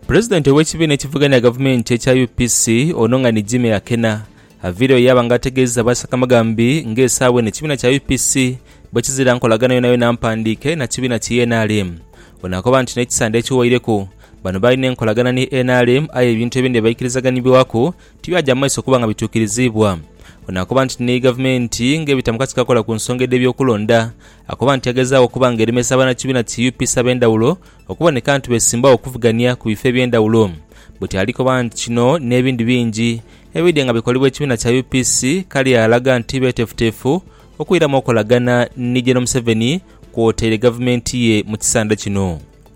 Pulezidenti ow'ekibiina ekivuganya gavumenti ekya UPC ono nga ni Jimmy Akena avaireyo yaaba nga ategeeza aba Sakamagambi nga esaawa eno ekibiina kya UPC bwekizira nkolagana yonayona mpandiike na kibiina ki nrm. Ono akoba nti n'ekisande ekiweireku bano baalina enkolagana ni nrm aye ebintu ebindi ebaikirizaganibwaku tibyaja mu maiso kuba nga bituukiriziibwa. Ono akoba nti ni gavumenti ng'ebita mu kakiiko akola ku nsonga edh'ebyokulonda Akoba nti agezaagho okuba nga eremesa bannakibiina ki UPC ab'endhawulo okuboneka nti beesimbagho okuvugania ku bifo eby'endhawulo. Bwetyo ali koba nti kino n'ebindi bingi ebidhye nga bikolebwa ekibiina kya UPC kale alaga nti beeteefuteefu okwiramu okolagana ni Gen Museveni kwotaire gavumenti ye mu kisanda kino.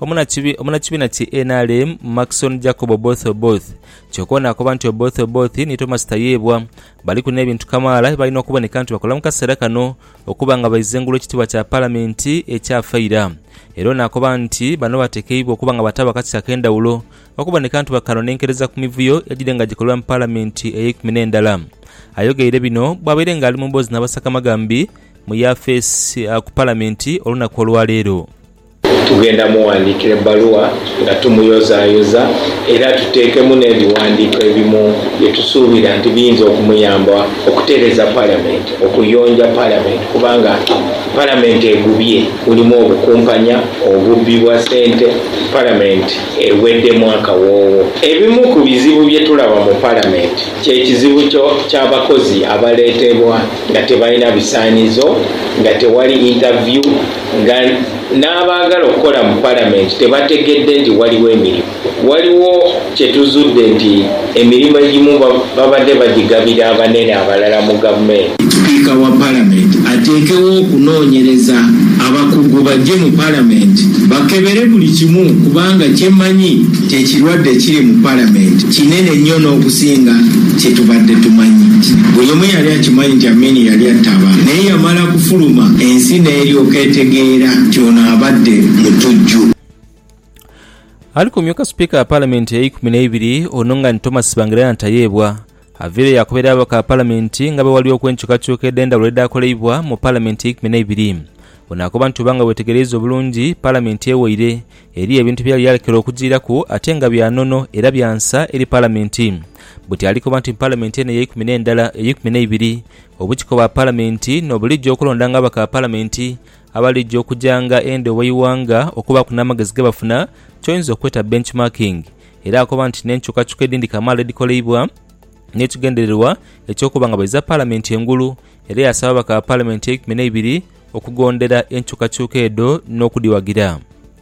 Omunakibiina ki nrm Maxon Jacob Oboth Oboth kyoka ono akoba nti Oboth Oboth ni Thomas Tayebwa baliku n'ebintu kamaala byebalina okuboneka nti bakola mu kaseera kano okuba nga baiza engulu ekitiibwa kya Palamenti ekyafa ira era ono akoba nti bano batekeibwa okuba nga bataawo akakisa ak'endhawulo okuboneka nti bakanonenkereza ku mivuyo egire nga gikolebwa mu Palamenti eyeikumi n'endala. Ayogeire bino bwabaire nga ali mu mboozi n'abasakamagambi mu yafeesi ku Palamenti olunaku olwaleero. Tugenda mughandiikira ebbaluwa nga tumuyozaayoza era tuteekemu n'ebighandiiko ebimu bye tusuubira nti biyinza okumuyamba okutereeza Palamenti, okuyonja Palamenti kubanga Palamenti egubye, mulimu obukumpanya, obubbi bwa ssente, Palamenti eweddemu akawoowo. Ebimu ku bizibu bye tulaba mu Palamenti kye kizibu ky'abakozi abaleetebwa nga tebalina bisaanizo, nga tewali interview, Nga n'abaagala okukola mu Palamenti tebategedde nti waliwo emirimu. Waliwo kye tuzudde nti emirimu egimu babadde bagigabira abanene abalala mu Gavumenti. Sipiika wa Palamenti ateekewo okunoonyereza abakugu baje mu Palamenti bakebere buli kimu kubanga kye mmanyi kye kirwadde kiri mu Palamenti kinene nnyo n'okusinga kye tubadde tumanyi. Buli omu yali akimanyi nti Amin yali attaba naye yamala. Yaakufuluma, ensi n'eryoka etegeera nti ono abadde mutujju. Ali ku myuka sipiika gha palamenti eikumi n'eibiri ono nga ni Thomas Tsvangirai Ntayeebwa, avaireyo yaakobera ababaka ba palamenti nga bwe waliwo okw'enkyukakyuka edh'endhawulo edhaakoleibwa mu palamenti eikumi n'eibiri. Ono akoba nti oba nga weetegereiza obulungi, palamenti ewaire, eriyo ebintu bye yali yalekera okujiiraku ate nga bya nono era bya nsa eri palamenti. Buti ali koba nti mu palamenti eno eyeikumi n'endala, eyeikumi n'eibiri, Obukiko bwa Palamenti no buligya okulondanga ababaka ba Palamenti abaligya okugyanga endhu ew'eighanga okubaaku n'amagezi ge bafuna ky'oyinza okweta benchmarking era akoba nti n'enkyukakyuka edhindhi kamaala edhikoleibwa n'ekigendererwa eky'okuba nga baidhiza Palamenti engulu era yaasaba ababaka ba Palamenti eikumi n'eibiri okugondera enkyukakyuka edho n'okudhiwagira.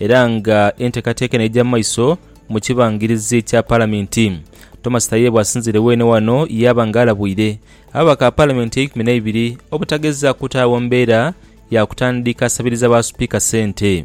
era nga enteekateeka eno eidhira mu maiso mu kibangirizi kya Palamenti. Thomas Tayebwa asinziire weene wano yaaba nga alabwire ababaka ba Palamenti eikumi n'eibiri obutageza kutaagho mbeera ya kutandika sabiliza ba Sipiika sente.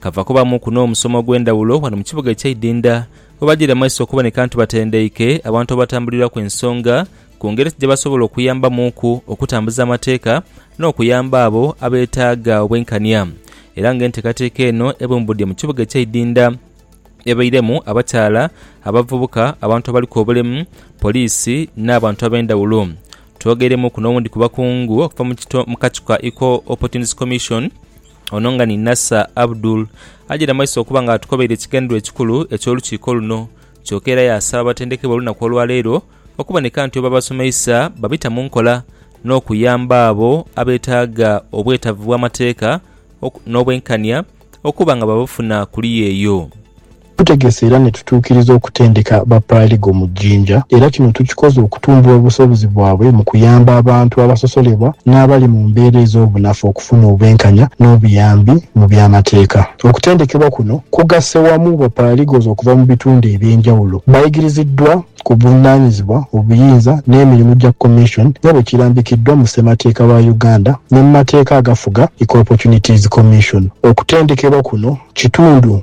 Kava kubamuku n'omusomo ogw'endhawulo ghano mu kibuga eky'eidhindha oghabagire mu maiso okuboneka nti batendeike abantu abatambuliraku ensonga ku ngeri ki gyebasobola okuyambamuuku okutambuza amateeka n'okuyamba abo abeetaaga obwenkania era nga enteekateeka eno ebumbudde mu kibuga eky'eidhindha ebairemu abakyala, abavubuka, abantu abaliku obulemu, poliisi n'abantu ab'endhawulo. Twogeiremuuku n'owundi ku bakungu okuva mu kacu ka Equal Opportunities Commission, Ono nga ni Nasser Abdul ajaire mu maiso okuba nga atukobeire ekigendererwa ekikulu eky'olukiiko luno kyoka era yaasaba abatendekebwa olunaku olwaleero okuboneka nti bwebabasomeisa babita mu nkola n'okuyamba abo abetaaga obwetavu bw'amateeka n'obwenkania okuba nga babufuna kuliya eyo. Tutegese era ni tutuukiriza okutendeka ba Paralegal mu Jinja era kino tukikoze okutumbula obusobozi bwabwe mu kuyamba abantu abasosolebwa n'abali mu mbeera ez'obunafu okufuna obwenkanya n'obuyambi mu by'amateeka. Okutendekebwa kuno kugasse wamu ba Paralegals okuva mu bitundu eby'enjawulo bayigiriziddwa ku buvunaanyizibwa, obuyinza n'emirimu gya Commission nga bwe kirambikiddwa mu Ssemateeka wa Uganda ne mu mateeka agafuga Equal Opportunities Commission. Okutendekebwa kuno kitundu.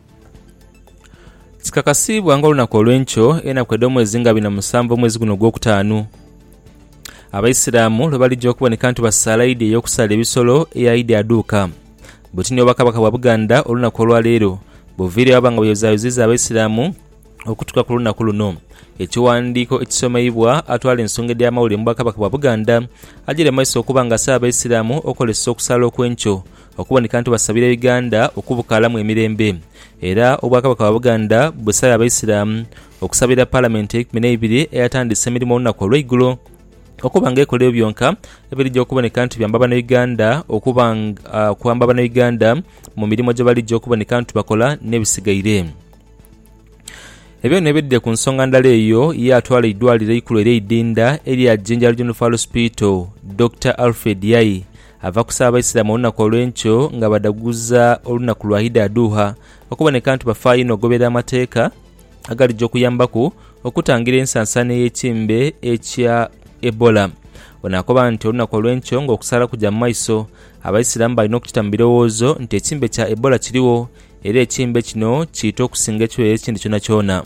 Kikakasiibwa nga olunaku olw'enkyo enaku edh'omwezi nga bina musanvu omwezi guno ogw'okutaanu, Abaisiramu lwe balija okuboneka nti basaala Idi ey'okusaala ebisolo eya Idi Adhuuka. Buti ni Obwakabaka bwa Buganda olunaku olwa leero buviire waba nga buyozaayoziiza Abaisiramu okutuuka ku lunaku luno. Ekiwandiiko ekisomeibwa atwala ensonga edh'amawulire mu Bwakabaka bwa Buganda ajeire mu maiso okuba nga asaba Abaisiramu okozesa okusaala okw'enkyo Okuboneka nti basabira Uganda okubukaalamu emirembe era Obwakabaka bwa Buganda busabye Abaisiraamu okusabira Palamenti eikumi n'eibiri eyatandise emirimo olunaku olweigulo okuba nga ekola ebyo byonka ebirija okuboneka nti biyamba Banauganda okuba nga Banauganda mu mirimo gyebalija okuboneka nti bakola n'ebisigaire Ebyo bino ebidhidhe ku nsonga ndala eyo yaatwala eidwaliro eikulu erye Idinda erya Jinja Regional Referral Hospital Dokita Alfred Yayi Ava kusa Abaisiramu olunaku olw'enkyo nga badhaguza olunaku lwa Idi Adhuha, okuboneka nti bafaayo inho okugoberera amateeka agalija okuyambaku okutangira ensansaana ey'ekimbe ekya Ebola. Ono akoba nti olunaku olw'enkyo ng'okusaala kuja mu maiso, Abaisiramu balina okukita mu birowoozo nti ekimbe kya Ebola kirigho era ekimbe kino kiita okusinga ekirwaire ekindi kyonakyona.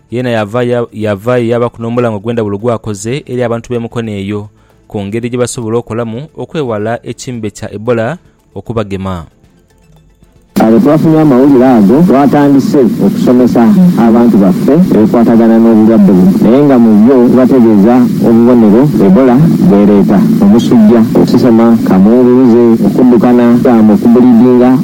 Yeena yava ya, yavaayo yaabaku n'omulango ogw'endhawulo gw'akoze eri abantu b'e Mukono eyo, ku ngeri gye basobola okolamu okwewala ekimbe kya Ebola okubagema. Agho twafunye amawulire ago, twatandise okusomesa abantu baffe ebikwatagana n'obulwadde buno, naye nga mu byo tubategeeza obubonero Ebola bw'ereeta, omusujja, okusesema, kaamunguluze, okuddukana, damu, okubulidinga,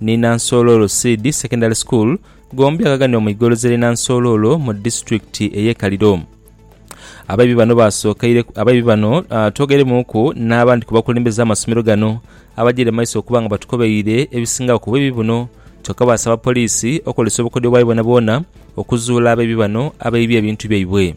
ni Nansoololo Seed Secondary School, gombi agaghanibwa mu igoloza ly'e Nansoololo mu disiturikiti ey'e Kaliro. Abaibi bano basookeire abaibi bano twogeiremuuku n'abandi ku bakulembeze amasomero gano abajaire mu maiso okuba nga batukobeire ebisingagho ku bwibi buno kyokka baasaba poliisi okozesa obukodyo bwayo bwonabwona okuzuula abaibi bano abaibye ebintu byaibwe.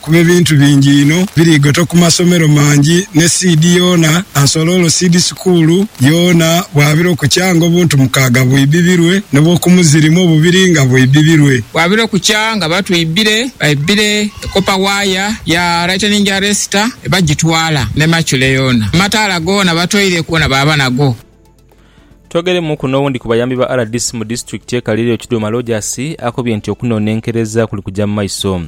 kuba ebintu bingi inho birigoto ku masomero mangi ne siidi yoona Ansoloolo Siidi Sukuulu yoona bwabira okukyanga obuntu mukaaga bwibibilwe n'obw'okumuzirimu obubiri nga bwibibilwe. Bwabira okukya nga batwibire baibire ekopa waaya ya laiteningi aresita ne bagitwala ne macule yoona. Amataala goona batoire goona baaba nago. Twogeremuuku n'owundi ku bayambi ba rdc mu disitulikiti ye Kaliri Okiduma Lojaasi akobye nti okunonenkereza kuli kuja mu maiso.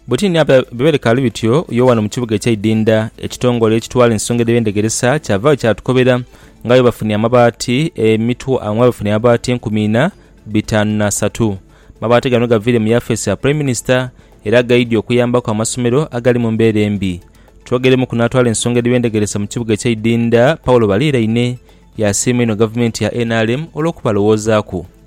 Bwetini ape bwe bikaali bityo, Yoanne mu kibuga ekyeidindha, ekitongole ekitwala ensonga edh'ebyendegeresa kyavaagho kyatukobera nga bwebafunye amabaati nga bwebafunye amabaati enkumi ina bitaanu na satu. Amabaati gano gavaire mu yafeesi ya Prime Minister era gaidhie okuyambaku amasomero agali mu mbeera embi. Twogeremuku n'atwala ensonga edh'ebyendegeresa mu kibuga ekyeidindha Paul Baliiraine yasiima inho gavumenti ya nrm olw'okubalowoozaku.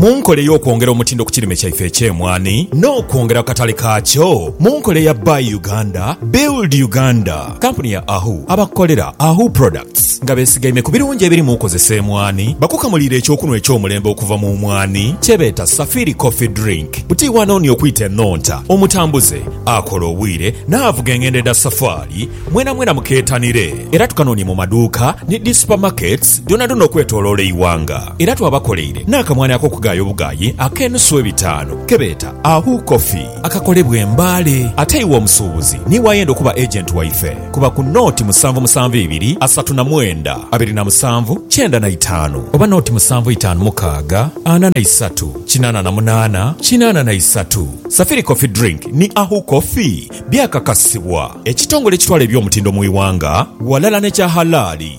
Mu nkola ey'okwongera omutindo ku kirime kyaife eky'emwaani n'okwongera ku katale kaakyo mu nkola eya Buy Uganda, Build Uganda, kampuni ya Ahu abakolera Ahu Products nga besigaime ku birungi ebiri mu kozesa emwaani bakukamuliire eky'okunhwa eky'omulembe okuva mu mwaani kyebeeta Safiri Coffee Drink. Buti wano ni okwita enhonta, omutambuze, akola obwire n'avuga engendo edha safaali, Mwenamwena mukeetanire era tukanoonye mu maduuka ni dhi supamaketi dhoonadhoona okwetooloola eighanga. Era twabakoleire n'akamwani ak'okugaaya obugaayi ak'enusu ebitaanu ke beeta Ahu Coffee akakolebwa e Mbale. Ate iwe omusuubuzi niiwe ayenda okuba agenti waife, kuba ku nooti musanvu musanvu ibiri asatu na mwenda abiri na musanvu kyenda na itaanu oba nooti musanvu itaanu mukaaga ana na isatu kinaana na munaana kinaana na isatu. Safiri Coffee Drink ni Ahu Coffee. Byakakasibwa ekitongole ekitwala eby'omutindo mu ighanga ghalala n'ekya Halali.